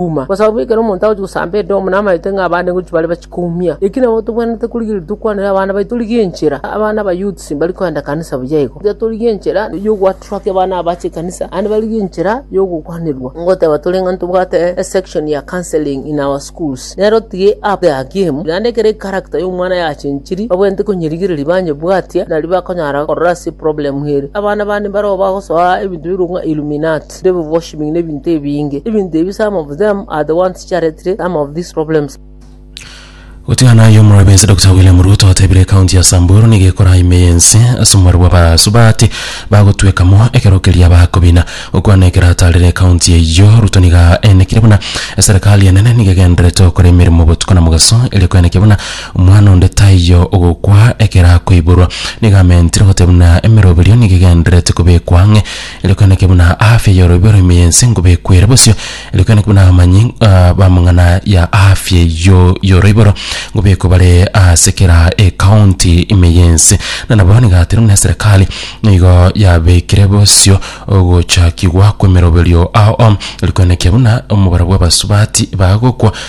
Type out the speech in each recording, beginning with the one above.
Kuma, kwa sababu ekero omonto agochia gosamba edomu namaete ng'a abande ngochia bare bachikoumia. Eki nabo tobwenerete korigereria tokwanere abana baito torigie enchera. Abana aba youths mbari koenda kanisa buya igo. Tiga torigie enchera yogoattracti abana aba bache ekanisa naende barigie enchera yogokwanerwa. Ngoteba tore ng'a ntobwate a section ya counselling in our schools. Nere otige app ya game naende ekero echaracter yomwana yachenchiri babwenerete konyerigereria banyebwatia nari bakonyara korora ase eproblem ere. Abana bande mbareo bagosoa ebinto bire ng'a illuminati. People worshiping na ebinto ebinge. Ebinto ebi some of them are the ones chiaretire some of these problems. Gotigana aye omorwebe ense Dokita William Ruto otebire ekaunti ya Samburu nigo ekora ime y'ense ase omobaro bwa basubaati bagotwekamo ekero keria bakobina. Gokwana ekero ataarire ekaunti eyio, Ruto nigo aenekire buna eserekari enene nigo egendererete gokora emeremo botuko na mogaso eria koenekia buna omwana onde taiyo ogokwa ekero akoiborwa. Nigo amentire goteba buna emeroberio nigo egendererete kobekwa ang'e Rirokaneke buna aafya y'oroibio rw'ime y'ense ngobekwere bosio, rirokaneke buna abamanyi ah, bamong'ana ya aafya eyio y'oroiboro ngobekwe bare ase kera ekaunti ime y'ense, na nabo nigatire buna eserekari nigo yabekire bosio ogochakigwa kw'emeroberio ao, rirokaneke buna omobaro bw'abasubati bagokwa,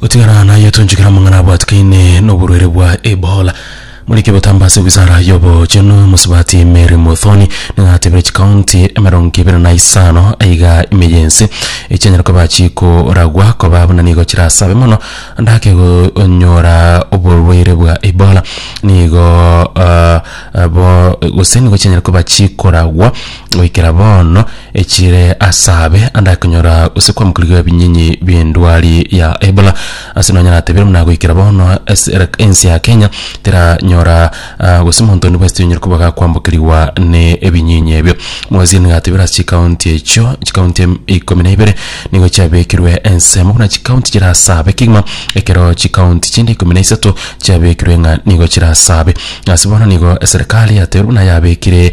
Gotigana naye tonchikera amang'ana abwatikaine n'oborwaire bwa Ebola. Moriki botamba ase wisara y'obochenu mosubati Mary Muthoni nigo atebire chikaunti emerongo ebere na isano aiga ime yense echianyare koba chikoragwa koba buna nigo chirasabe mono ndake gonyora oborwaire bwa Ebola nigo ah, abo gose nigo chianyare koba chikoragwa Goikera bono, echiire asaabe ande akonyora gose kwamokirigwa ebinyenyi bi'endwari ya Ebola. Ase nonya natebire buna goikera bono ase era ense ya Kenya teranyora ah, gose monto onde bwesiti onyare koba gakwambokerigwa ne ebinyinyi ebio. Omogwesini gatebire ase chikaunti echio, chikaunti em- ikomi na ibere nigo chiabekirwe ensemo buna chikaunti chirasaabe kegima, ekero chikaunti chinde ikomi na isato chiabekirwe ng'a nigo chirasaabe. Ase bono nigo eserekari yatebire buna yabekire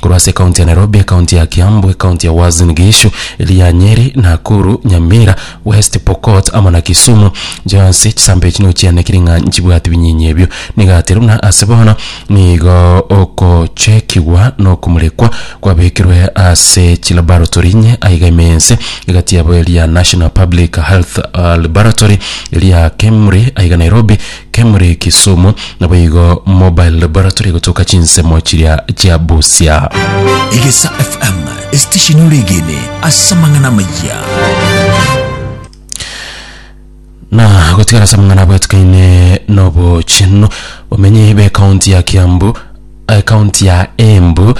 korwa ase ekaunti ya Nairobi, ekaunti ya Kiambu, ekaunti ya Uasin Gishu, eria ya Nyeri, Nakuru, Nyamira, West Pokot amo na Kisumu. Chionsi chisaamba echi nigo chianekirie ng'a nchibwati binyinyi ebio. Nigaterwe buna ase bono nigo okochekigwa na okomorekwa kwabekirwe ase chilaboratory inye aiga ime ense, egati yabo eria ya National Public Health Laboratory, eria ya KEMRI aiga Nairobi, Kemuri Kisumu, naboigo Mobile Laboratory egotoka chinsemo chiria chia Busia. Egesa FM, esitesheni ore egene ase amang'ana amaya. Na gotigara ase amang'ana abwatikaine nobochenu, bamenyi b'ekaunti ya Kiambu, ekaunti ya Embu,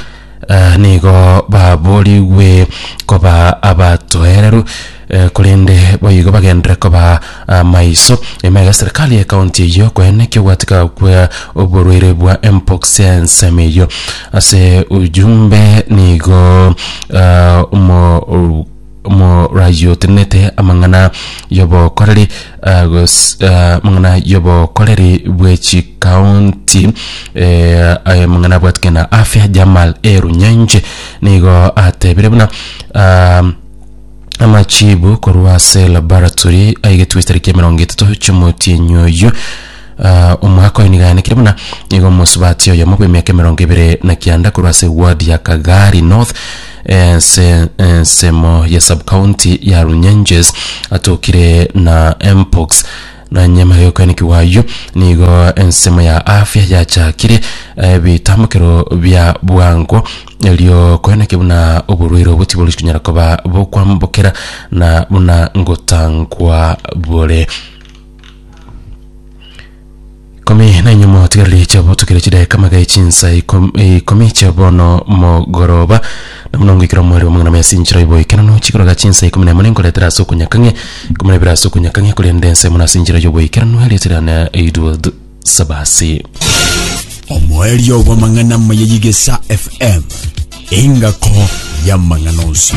Aa nigo baboorigwe koba abatoereru, eh, korende boigo bagenderere koba amaiso. Nyuma iga serikali ye county eyio koeena eki'ogoatika kwa oborwaire bwa Mpox ensemo eyio. Ase ujumbe nigo ah, omo- morayotenenete amang'ana y'obokoreri ah, gos- ah, amang'ana y'obokoreri bwe chikaunti eh, aye mang'ana abwatike na afya jamal erunyenje nigo atebire buna ah, amachibu korwa ase laboratory aigetwe tariki ya mirongo etato chimoti enyoyu Omwaka oye nigo yaanekire buna nigo omosubati oyomo bw'emiaka emerongo ebere na kianda korwa ase eward ya Kagari North ense ensemo ya subcounty ya Runyenjes atokire na mpox na nyuma y'okoenekigwa ayio nigo ensemo ya afya yachakire ebitambokero bia bwango erio koeneke buna oborwaire obwo tibori konyara koba bokwambokera na buna ngotangwa bore Ikomi na inyuma otigarire chiabo tokire chidakika amaga echinsa ikom- eh, ikomi chia bono mogoroba na buna ngoikera omweri wa magana mesi nchera yoboikeranu chikoroga chinsa ikomi na emo ninkoretera ase okonyakang'e ikomi na ibere ase okonyakang'e korende ense mono ase enchera yoboikeranu erieta riane eidwad sabasi omoerio bw'amang'ana maya y'igesa fm engako y'amang'ana onsi